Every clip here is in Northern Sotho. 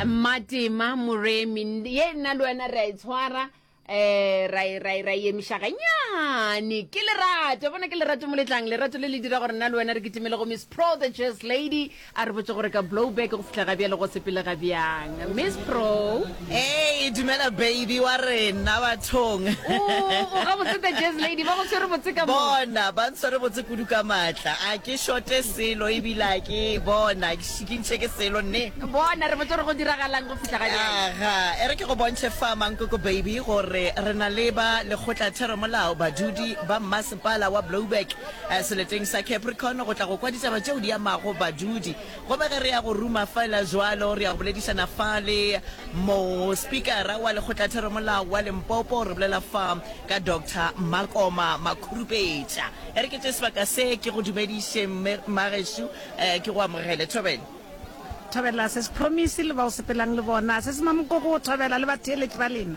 mmatema moremi ye nna le wena re a e tshwara um ra e- ra e- ra e emiša ganyane ke lerato bona ke lerato mo letlang lerato le le dira gore nna le wena re kitimele go miss pro the jazz lady a re botse gore ka blowback go fitlha ga bjale go sepele ga bjang miss pro Hey, dumela baby wa rena bathong. o ga boseta jazz lady ba go tshwere botse ka mo. Bona ba ntshwere botse kudu ka matla. A ke shote selo e bila ke bona ke ntse ke selo ne. Bona re botse re go diragalang go fihla ga jana. Aha, ere ke go bontshe fa mankoko baby gore re na le ba lekgotla thero molao badudi ba mmasepala wa Blouberg eh, seleteng sa Capricorn go tla go kwa ditaba tšeo di amago badudi Goba ge re ya go ruma fela jwalo, re ya go boledišana fa le mo Spikara wa Lekgotlatheramolao wa Limpopo, re bolela fa ka Doctor Makoma Makhurupetša. E re ke tše sebaka se, ke go dumediše mme, Mmagešu, eh, ke go amogele. Thobela. Thobela, Sesi Promise le ba o sepelang le bona, Sesi Mamokoko, Thobela le batheeletši ba lena.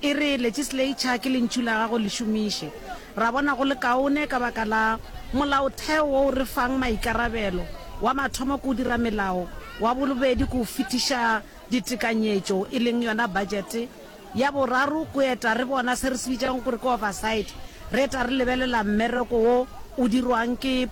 E re legislature ke lentšu la gago le šomiše. Ra bona go le kaone ka baka la molaotheo wo o re fang maikarabelo, wa mathomo ke o dira melao, wa bolobedi ke o fetiša ditekanyetšo e leng yona budget, ya boraro ke o eta re bona se re se bitšang gore ke oversight, re eta re lebelela mmereko wo o dirwang ke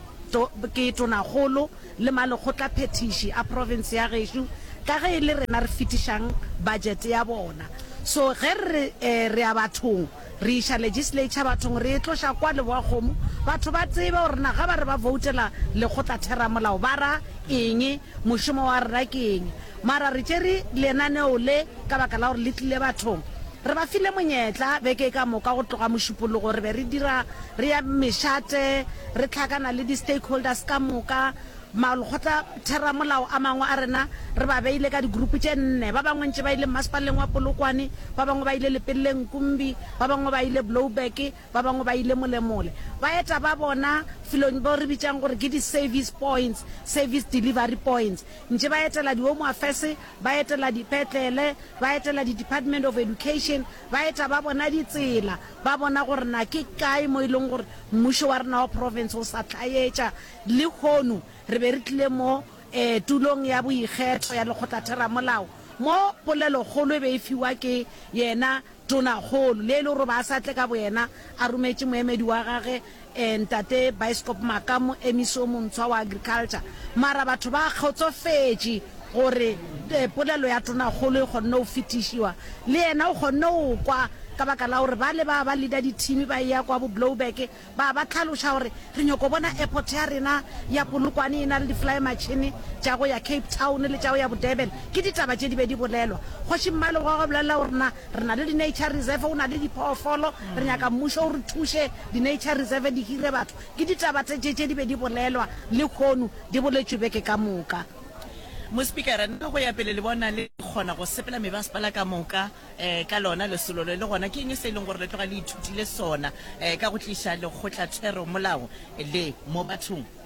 ke tonakgolo. le malekgotlaphethiši a profense ya gešo ka ge e le rena re fetišang budget ya bona. So ge re re re ya bathong, re iša legislature bathong, re e tloša kwa Leboakgomo, batho ba tsebe gore na ge ba re ba voutela lekgotlatheramolao ba ra eng, mošomo wa rena ke eng. Mara re tšere lenaneo le ka baka la gore le tlile bathong. Re ba file monyetla beke e ka moka go tloga Mošupologo. Re be re dira, re ya mešate, re hlakana le di-stakeholders ka moka, makgotlatheramolao a mangwe a rena re ba beile ka di-group tše nne. Ba bangwe ntše ba ile Mmasepaleng wa Polokwane, ba bangwe ba ile Lepelleng Kumbi, ba bangwe ba ile Blouberg, ba bangwe ba ile Molemole. Ba eta ba bona felong bo re bitšang gore ke di-service points, service delivery points. Ntše ba etela di-Home Affairs, ba etela dipetlele, ba etela di-Department of Education, ba eta ba bona ditsela, ba bona gore na ke kae mo e leng gore mmušo wa rena wa province o sa tlhaetša. Lehono re be re tlile mo um tulong ya boikgetho ya Lekgotlatheramolao mo polelokgolo e be e fiwa ke yena Tonakgolo, le e le gore o be a sa tle ka boyena, a rometše moemedi wa gage, eh, Ntate Baesekopo Maka, moemisi yo montshwa wa Agriculture. Mara batho ba kgotsofetše gore, eh, polelo ya Tonakgolo e kgonne go fetišiwa. Le yena o kgonne go kwa ka baka la gore bale ba ba leader dithimi ba eya kwa bo Blouberg, Ba ba hlaloša gore, Re nyoko bona airport ya rena ya Polokwane e na le di-flymatšhene tša go ya Cape Town le tša go ya Bo-Durban. Ke ditaba tše di be di bolelwa. Kgoši Mmalebogo a bolelela gore, Na re na le di-nature reserve, go na le diphoofolo, re nyaka mmušo o re thuše di-nature reserve di hire batho. Ke ditaba tše tše tše di be di bolelwa lehono di boletšwe beke ka moka. Mospikara, Nna go ya pele le bona le kgona go sepela mebasepala ka moka um ka lona lesolo le, le gona ke eng se e leng gore le tloga le ithutile sona um ka go tliša lekgotlatheromolao le mo bathong?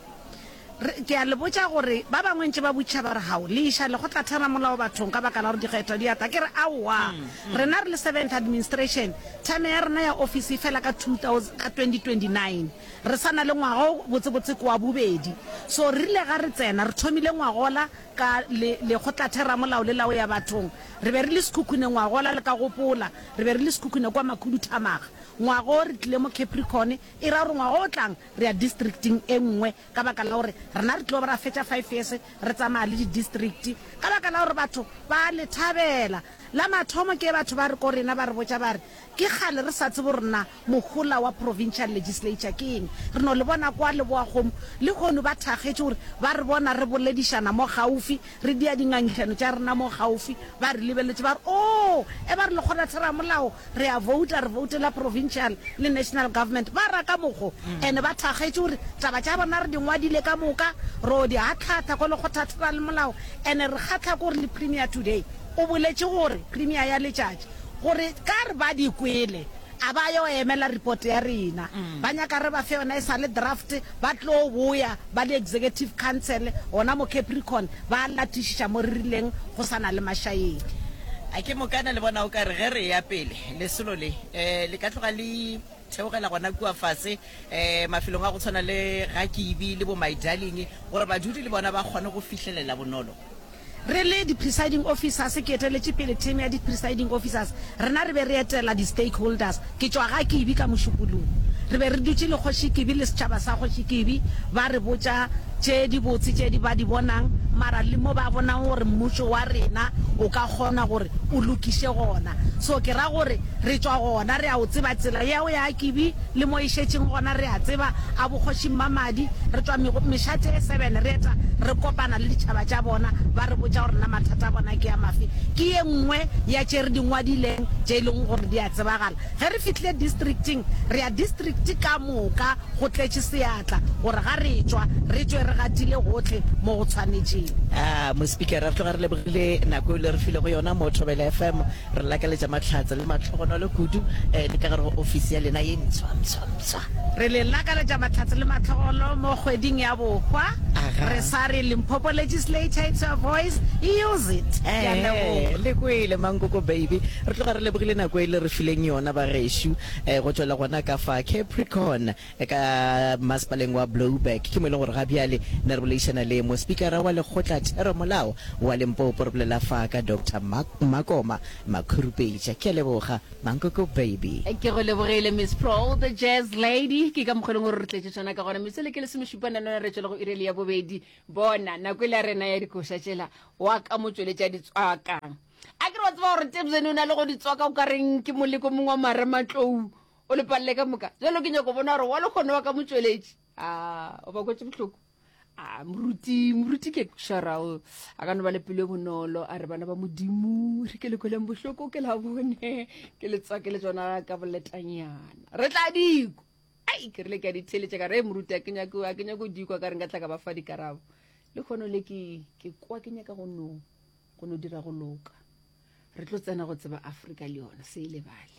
Re, ke a le botša gore ba bangwe ntše ba butša ba re, Hao, le iša lekgotlatheromolao bathong ka baka la gore dikgetho di a tla. Ke re, Aowa. Rena re le Seventh Administration, thame ya rena ya ofisi e fela ka 2000, ka 2029. Re sa na le ngwaga o botsebotse ke wa bobedi. So re rile ga re tsena, re thomile ngwagola ka le, lekgotlatheramolao le la go ya bathong. Re be re le sekhukhune ngwaga ola, le ka gopola. Re be re le sekhukhune kwa Makhuduthamaga. Ngwaga o re tlile mo Capricorn, e ra gore ngwaga o tlang re ya districting e nngwe, ka baka la gore rena re tlo ba ra fetša five years re tsamaya le di-district, ka baka la gore batho ba a le thabela. La mathomo ke ge batho ba re ko rena, ba re botša ba re, Ke kgale re sa tsebe gore na Mohola wa Provincial Legislature ke eng? Re no le bona kwa Leboakgomo, lehono ba thakgetše gore ba re bona re boledišana mo gaufi, re dia dingangišano tša rena mo gaufi, ba re lebeletše ba re, Oo, e ba re Lekgonatheramolao, re a vouta, re voutela Provincial le National Government. Ba ra ka mokgo. And ba thakgetše gore taba tša rena re di ngwadile ka moka, ro di atlhatha ko Lekgothatheralmolao, and re kgahla ke gore le Premier today o boletše gore, Premier ya letšatši, gore ka re ba di kwele, A ba yo emela report ya rena. Ba nyaka re ba fe yona e sa le draft, ba tlo boya ba le executive council gona mo Capricorn ba latišiša mo re rileng go sa na le mašaedi. A ke mokana le bona o ka re ge re eya pele lesolo le le ka tloga le theogela gona kua fase mafelong a go tshwana le ga Kibi le bo My Darling gore badudi le bona ba kgone go fihlelela bonolo? Re le di-presiding officers, ke eteletše pele team ya di-presiding officers, rena re be re etela di-stakeholders, ke tšwa ga Kibi ka mošupologo, re be re dutše le Kgoši Kibi le setšhaba sa Kgoši Kibi, ba re botša tše di botse tše di ba di bonang, mara le mo ba bonago gore mmušo wa rena o ka kgona gore o lokiše gona, so ke ra gore re tšwa gona, re a o tseba tsela ya go ya Kibi, Le mo e šetšeng gona re a tseba, a bokgoši Mmamadi, re tšwa mešate e seven re eta re kopana le ditšhaba tša bona, ba re botša gore na mathata a bona ke a mafe. Ke ye nngwe ya tše re di ngwadileng tše e lego gore di a tsebagala. Ge re fihlile districting, re ya district ka moka go tletše seatla gore ga re tšwa re tšwe re gatile gohle mo go tshwanetšego. Aa, Mospikara, re tloga re lebogile nako e le re filego yona mo Thobela FM. Re lakaletša mahlatse le mahlogonolo kudu le ka gare go ofisi ya lena ye ntshwa-ntshwa-ntshwa. Re le lakaletša mahlatse le mahlogolo mo kgweding ya bohwa. Aga. Re sa re Limpopo Legislature, it's your voice, use it. Ke a leboga. Ee, le kwele Mankoko baby. Re tloga re lebogile nako e le re fileng yona bagešo. Go tšwela gona ka fa Capricorn. ka Masepaleng wa Blouberg, ke mo e leng gore ga bjale ne re boledišana le Mospikara wa Lekgotla Theromolao wa Limpopo, re bolela fa ka Doctor Mark Makoma Makhurupetša. Ke a leboga, Mankoko Baby. Ke go lebogile Miss Prole the Jazz Lady. Ke ka mokgwa e leng gore re tletše tšona ka gona. Metsele ke lesomešupa nanone re tšwela go iri e le ya bobedi. Bona, nako e le ya rena ya dikoša tšela, wa ka mo tšweletša di tswaka. A ke re wa tseba gore Tebzeni o na le go di tswaka o ka reng ke moleko mongwe wa marematlou, O le palele ka moka. Jalo ke nyako bona gore wa lekgono wa ka motšweletši. A, o ba kwetše bohloko. A, moruti, moruti ke Sharao. A ka no ba le pelo e bonolo, a re bana ba Modimo, re ke le kweleng bohloko, ke la bone, ke le tswake le tsona ka boletanyana. Re tla diko. Ai, ke rile ke a di theletša ka re, e moruti, a ke nyako, a ke nyako diko, ka re nka tla ka ba fa dikarabo. Le kgono le ke, ke kwa ke nyaka go no, go no dira go loka. Re tlo tsena go tseba Afrika le yona, se e lebale.